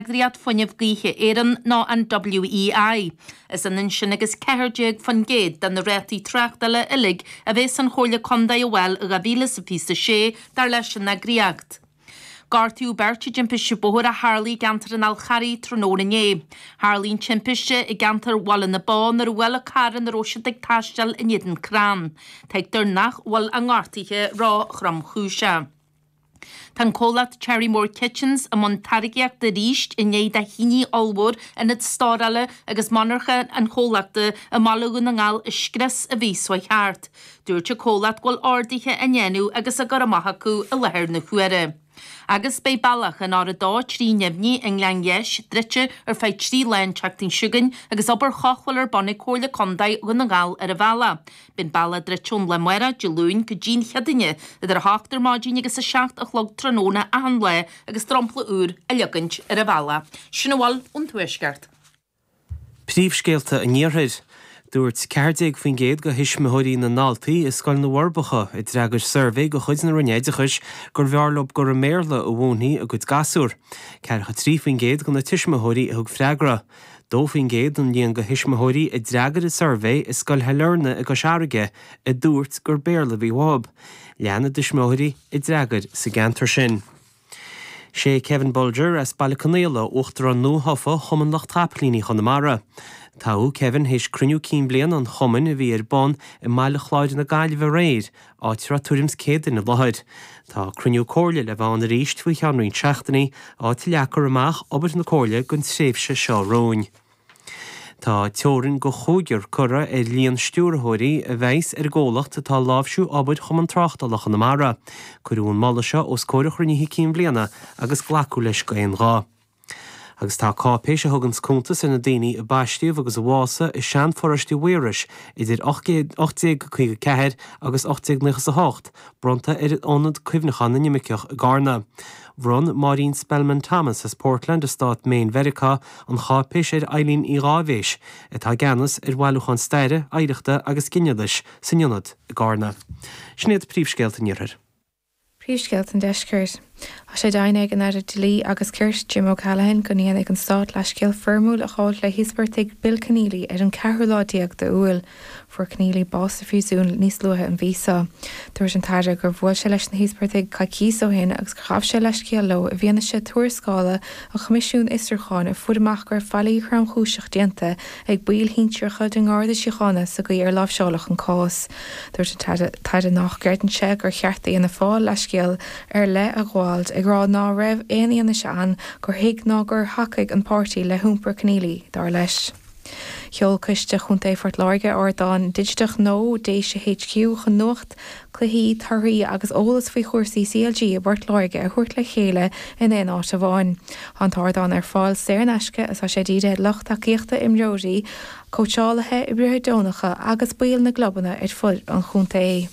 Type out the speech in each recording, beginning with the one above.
eagraíocht Fuinneamh Gaoithe Éireann ná an WEI. Is ionann sin agus 14% de na rátaí tráchtála uilig a bheas an Chomhairle Contae a fháil i 2026 dar leis an eagraíocht. Gortaíodh beirt i dtimpiste bóthair a tharla i gceantar an Fhal Charraigh tráthnóna inné. Tharla an timpiste i gceantar Bhaile na Bó nuair a bhuail an carr ina raibh siad ag taisteal in éadan crann. Tuigtear nach bhfuil a ngortaithe ró-thromchúiseach. Tá an comhlacht Cherrymore Kitchens i mbun táirgíochta arís i ndiaidh do thine ollmhór ionad stórála agus monarcha an chomhlachta i mBaile Dhún na nGall a scrios an mhí seo thart. Dúirt an comhlacht go bhfuil orduithe á ndéanamh agus á gcur amach acu i láthair na huaire. Agus beidh bealach an R230 i nGleann Gheis, druidte ar feadh trí lá an tseachtain seo chugainn agus obair chothabhála ar bun ag Comhairle Contae Dhún na nGall ar an bhealach. Beidh an bealach druidte ón lá amárach Dé Luain go dtí an Chéadaoin idir 8 ar maidin agus 7 a chlog tráthnóna achan lá agus dromchla úr á leagaint ar an bhealach. Sin a bhfuil ón Tuaisceart. Príomhscéalta an Iarthair. Dúirt ceathair déag faoin gcéad de thuismitheoirí na ndaltaí i Scoil na bhForbacha a d'fhreagair suirbhé de chuid na Roinne Oideachais gurbh fhearr leo gur i mBéarla a mhúinfí a gcuid gasúr. Ceathracha trí faoin gcéad de na tuismitheoirí a thug freagra. 2% den líon tuismitheoirí a d'fhreagair an suirbhé i Scoil Shailearna i gCois Fharraige a dúirt gur Béarla a bhí uathu. Leath na dtuismitheoirí a d'fhreagair sa gceantar sin. Sé Kevin Bolger as Baile Conaola Uachtarán nua-thofa Chumann Lucht Capaillíní Chonamara. Toghadh Kevin théis cruinniú cinn bliana an Chumainn a bhí ar bun i mBaile Chláir na Gaillimhe aréir áit a raibh tuairim 's céad duine i láthair. Tá cruinniú comhairle le bheith ann aríst faoi cheann roinnt seachtainí, áit a leagfar amach obair na comhairle don tréimhse seo romhainn. Tá teorainn go cúigear curtha ar líon stiúrthóirí a bheas ar an gcomhlacht atá ag láimhsiú obair Chumann Tráchtála Chonamara. Cuireadh an moladh seo os comhair an chruinnithe cinn bliana agus glacadh leis d'aon ghuth. Agus tá cáipéis a thuganns cuntas ar na daoine a baistíodh agus a pósadh i sean-pharóiste Mhaírois idir 1854 agus 1898 bronnta ar Ionad Cuimhneacháin na nImirceach i gCarna. Bhronn Máirín Spellman Thomas as Portland i Stát Maine Mheiriceá an cháipéis ar Eileen Uí Dháibhéis, atá i gceannas ar Bhailiúchán Staire, Oidhreachta agus Ginealais san Ionad i gCarna. Sin iad príomhscéalta an Iarthair. Príomhscéalta an Deiscirt. Tá sé d'aidhm ag an Aire Dlí agus Cirt, Jim O'Callaghan, go ndéanfaidh an Stát leithscéal foirmiúil a ghabhailt le híospartaigh Bill Kenneally ar an ceathrú lá déag de Iúil. Fuair Kenneally bás sa phríosún níos luaithe an mhí seo. Dúirt an tAire gur bhuail sé leis na híospartaigh coicíos ó shin agus gur ghabh sé leithscéal leo i bhfianaise tuarascála an Choimisiúin Fhiosrúcháin a fuair amach go raibh faillí thromchúiseach déanta ag baill shinsearacha den Gharda Síochána sa gcaoi ar láimhseáladh an cás. Dúirt an tAire nach gcreideann sé gur cheart d'Fhianna Fáil leithscéal ar leith a ghabháil ag rá ná raibh aon fhianaise ann gur thuig ná gur thacaigh an páirtí le hiompar Kenneally, dar leis. Sheol Coiste Chontae Phort Láirge ardán digiteach nua Déise HQ chun nuacht, cluichí, torthaí agus eolas faoi chúrsaí CLG i bPort Láirge a thabhairt le chéile in aon áit amháin. Tá an t-ardán ar fáil saor in aisce is tá sé dírithe ar lucht tacaíochta imreoirí, cóitseálaithe, oibrithe deonacha agus baill na gclubanna ar fud an chontae.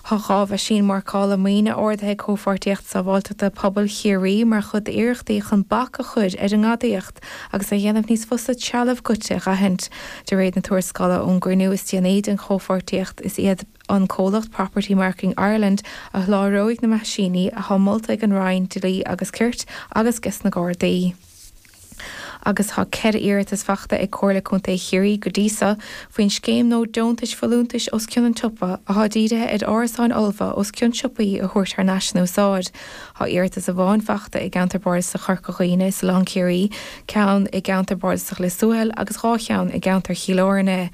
Tá dhá mheaisín mharcála maoine ordaithe ag Comhpháirtíocht Sábháilteachta Pobail Chiarraí mar chuid d'iarrachtaí chun bac a chur ar an ngadaíocht. agus a dhéanamh níos fusa trealamh goidte a dh'aithint. De réir na tuarascála ón gcruinniú is déanaí den chomhpháirtíocht, is iad an comhlacht Property Marking Ireland a sholáthróidh na meaisíní atá molta ag an Roinn Dlí agus Cirt agus ges na Gardaí, agus tá ceithre iarratas faighte ag Comhairle Contae Chiarraí go dtí seo faoin scéim nua deontais folúntais os cionn an tsiopa atá dírithe ar árasáin fholmha os cionn siopaí a thabhairt thar n-ais in úsáid. Tá iarratas amháin faighte i gceantar bardasach Chorca Dhuibhne is Oileán Ciarraí, ceann i gceantar bardasach Lios Tuathail agus dhá cheann i gceantar Chill Airne.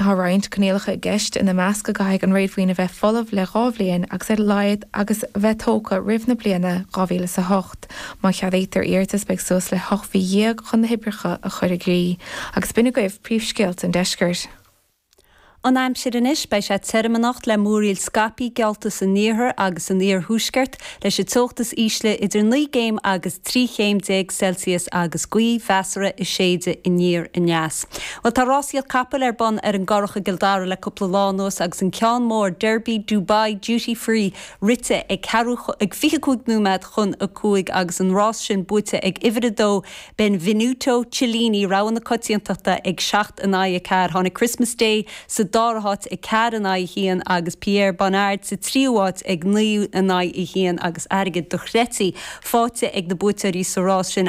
Tá roinnt coinníollacha i gceist, ina measc go gcaithfidh an réadmhaoin a bheith folamh le dhá bhliain agus a laghad agus a bheith tógtha roimh na bliana 2000 is 8. Má cheadaítear iarratas beidh suas le hocht mhí dhéag chun na hoibreacha a chur i gcrích. Agus b'in agaibh príomhscéalta an deiscirt. An aimsir anois, beidh sé tirim anocht le múraíl scaipthe geallta san iarthar agus san iarthuaisceart, leis an teocht is ísle idir naoi gcéim agus trí chéim déag Celsius agus gaoth mheasartha ag séideadh aniar aneas. Bhuel, tá rásaíocht capall ar bun ar an gCurrach i gCill Dara le cúpla lá anuas agus an ceann mór, Derby Dubai Duty Free, rite ag ceathrú ag fiche cúig nóiméad chun a cúig agus an rás sin buaite ag uimhir a dó, Benvenuto Cellini, rogha na coitiantachta ag seacht in aghaidh a ceathair. Tháinig Christmas Day sa dara háit ag ceathair in aghaidh a haon agus Pierre Bonnard sa tríú háit ag naoi in aghaidh a haon agus airgead dochreidte faighte ag na buaiteoirí sa rás sin.